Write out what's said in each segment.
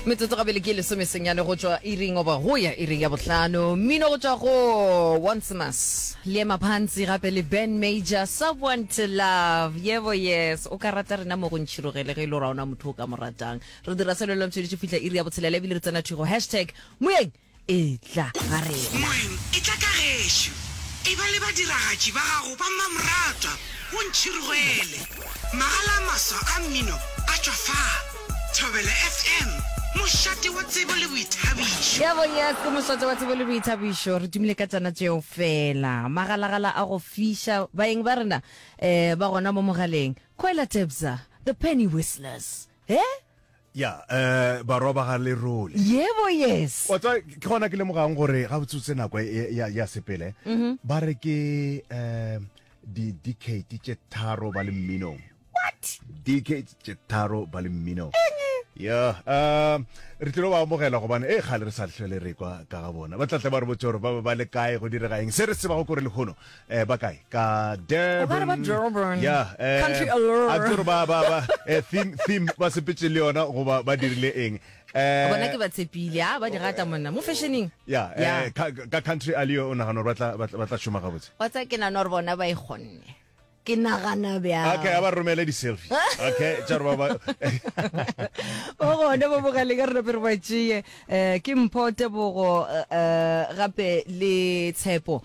metsotso gabele ke lesome senyane go tšwa iring oba go ya iring ya bohlano mmino go tšwa go oncemas le maphantsi gape le ben major someone to love yebo yes o ka rata rena mo go ntšhirogele ge e le o ra ona motho o ka mo ratang re dira selo le ntshweditše fitlha iri ya botshelela ebile re tsena thigo hashtag moyeng Etla ga rena. Moeng, etla ka gešo. Eba le badiragatši ba gago ba mmamoratwa, o ntšhirogele. Magala a maswa a mmino a tšwa fa. Thobela FM, mošate wa tsebo le boithabišo. Yebo, yes, ke mošate wa tsebo le boithabišo. Re tumile ka tšona tšeo fela. Magalagala a go fiša. Baeng ba rena um ba gona mo mogaleng. Khwela Tebza, The Penny Whistlers. He? Ya, eh, barwa ba ga Lerole. Yebo, yes. Wa tswa, ke gona ke lemogang gore ga botsotse nako e- e- ya ya sepele Mhm. ba re ke um di decade tše tharo ba le mminong what decade tše tharo ba le mminong ya um re tlilo ba amogela gobane e kgale re sa tlhole re kwa ka ga bona ba tlatla ba re botse gore ba ba le kae go direga eng se re se bago kore lehono eh ba kae ka Durban ba Durban yeah eh, country allure a tsere ba ba ba eh, theme theme ba sepetse le yona go ba ba dirile eng eh bona ke ba tshepile ha ah, ba di rata monna mo fashioning yeah eh ka country allure o nagana ba tla ba tla shuma ga botse wa tsa ke na nor bona ba e gonne ke nagana bjang okay a ba romele di selfie okay tsa ba ba o gone bo boga le ka re re ba tšee eh ke mpote bogo eh, eh, gape le tshepo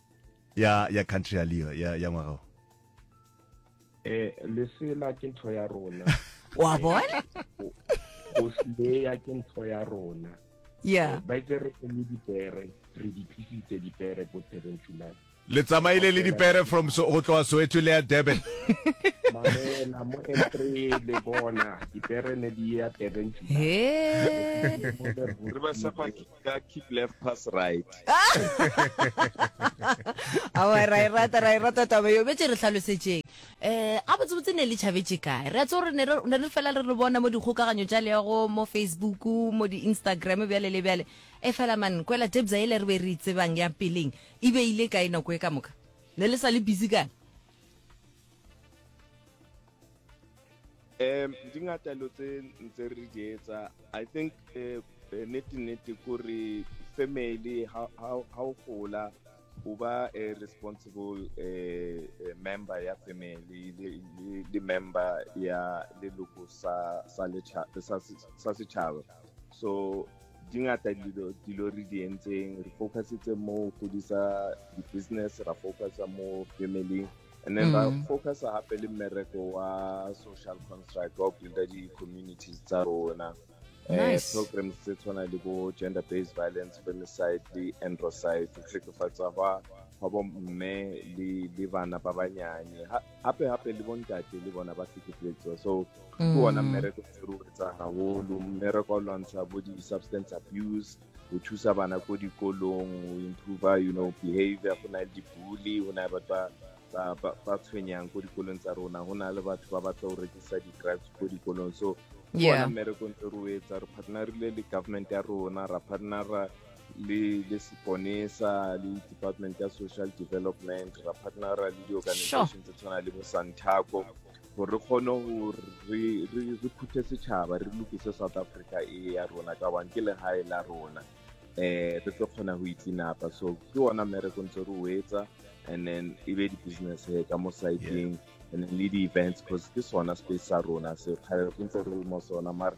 ya ya country ya leo ya ya ngwaga o eh lesela ke ntho ya rona wa bona go sleya ke ntho ya rona yeah eh, ba itse re le dipere re di phisitse dipere ko thereng tšulane le tsamaile le dipere from so go tloa soweto le ya durban mamela mo entry le bona dipere ne di ya thereng tšulane he ka keep left pass right awa ra e rata ra e rata taba yo betse re tlhalosetšeng um ga botsebotse ne le tšhabetse kae re a tse gore ne re ne re fela re re bona mo dikgokaganyo tša leago mo facebook mo di-instagram bjale le bjale e fela man kwela tebsa ele re be re e tsebang ya peleng e beile kae nako e ka moka ne le sa le busy kae um di ngata dilo tse ntse re di etsa i think eh, eh, nete nete kore family ha o gola o ba a eh, responsible um member ya family le member ya leloko sa setšhaba so di ngata dilo re di entseng re focusitse mo godisa di-business ra focusa mo family and then ra mm. focus gape le mmereko wa social construct wa go builda di-communities tsa rona um eh, programs tse tshwana le bo gender based violence femicide le androcide go tlhekefatsa gwa gwa bomme le bana ba banyane gape gape le bontate le bona ba tlhekefetswa so ke mm. ona mmereko e re o etsa gagolo mmereko wa lwantsha bo di-substance abuse go thusa bana ko dikolong go improve you know behavior go na le dibully go na le batho ba ba ba tshwenyang ko dikolong tsa rona go na le batho ba batla go rekisa di-drugs ko dikolong so ke Yeah. bona mmereko ntse re o etsa re partnerile le government ya rona ra partnera le le seponesa le department ya social development ra partnera le di-organization tse tshwana le bo santaco gore re kgone gore re, re, re phuthe setšhaba re lokise south africa e ya rona ka bang ke legae la rona eh re tlo kgona go itsinapa so ke ona mmereko ntse re o etsa and then e be di-business he ka mo sideng and then le di-events because ke sona space sa rona se kgale re ntse re le mo sona mare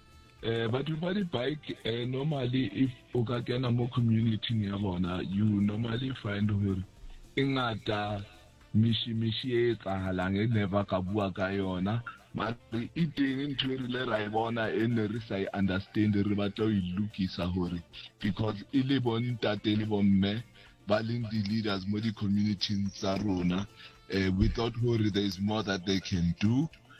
Eh, batho ba di-bike eh, normally if o ka kena mo community ya bona you normally find gore e ngata mishimishi e etsahalang e ne ba ka bua ka yona mare e teng ntho e rile ra e bona e ne re sa e understand re batla o e lokisa gore because e le bontate le bomme ba leng di-leaders mo di-communityng tsa rona um without gore there is more that they can do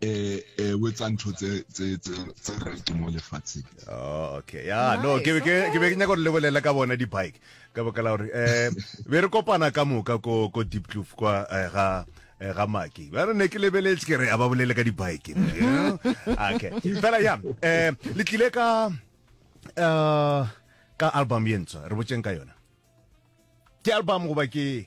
eh eh o etsa ntho tse tse tse tse right mo lefatsheng oh okay ya no ke ke ke be ke nyaka go lebelela ka bona di bike ka baka la gore eh be re kopana ka moka ko ko deep kloof kwa eh, ga eh, ga maki ba re ne ke lebeletse ke re a ba bolele ka di bike okay fela ya eh le tlile ka eh ka album ye ntswa re botseng ka yona ke album goba ke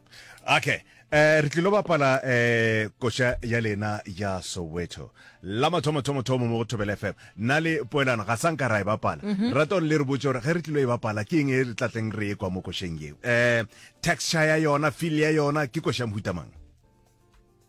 Okay, eh, re tlilo bapala eh, koša ya lena ya soweto la mathomo thomo thomo mo go thobela fm na le poelano ga sanka ra e bapala mhm. rata gore le re botse gore ge re tlilo e bapala ke eng e re tlatleng re e kwa mo košeng yeo um eh, texture ya yona feel ya yona ke koša mohutamang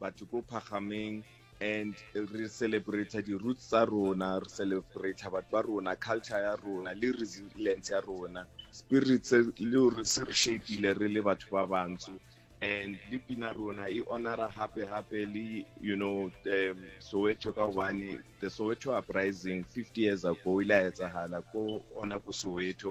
batho ko phagameng and re celebrate di roots tsa rona re celebrate batho ba rona culture ya rona le resilience ya rona spirits le re se re shapile re le batho ba bantsho and le pina rona e honora hape hape le you know um, soweto ka gobane the soweto uprising 50 years ago ile a etsahala ko ona ko soweto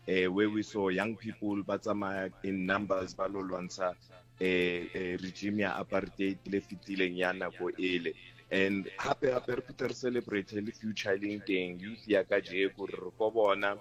uh, where we saw young people ba tsamaya in numbers ba lo lwantsha e, e regime ya apartheid le fetileng ya nako ele and hape hape re phete re celebrate le future e leng teng youth ya ka jeko re re ko bona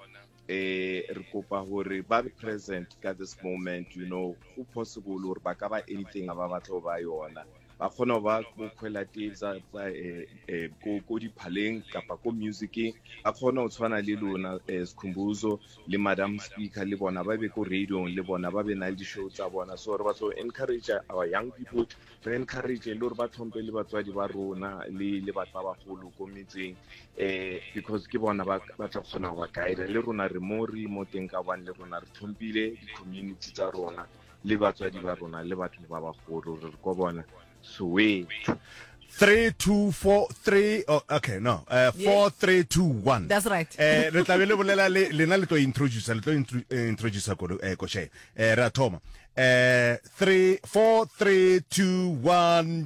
eh re kopa gore ba be present ka this moment you know go possible gore ba ka ba anything ba batla go ba yona ba kgona go ba ko kgwelateng tsa eh, eh, ko diphaleng kapa ko musiceng ba kgona go tshwana le lona eh, sikhumbuzo le madam speaker le bona ba be ko radiong le bona ba be na le di-show tsa bona so re batlo encourage our young people re encourage le gore ba tlhompe le batswadi ba rona le batho ba bagolo ko metseng um because ke bona ba tla kgona go ba guide le rona re mo re mo teng ka bane le rona re tlhompile di-community tsa rona le batswadi ba rona le batho ba bagolo re re kwa bona soweto 3243 oh, okay no uh, 4321 That's right. eh re tla be le bolela le lena le tlo introduce le tlo intro- eh, introduce ko eh ko she eh ra thoma eh 3 4321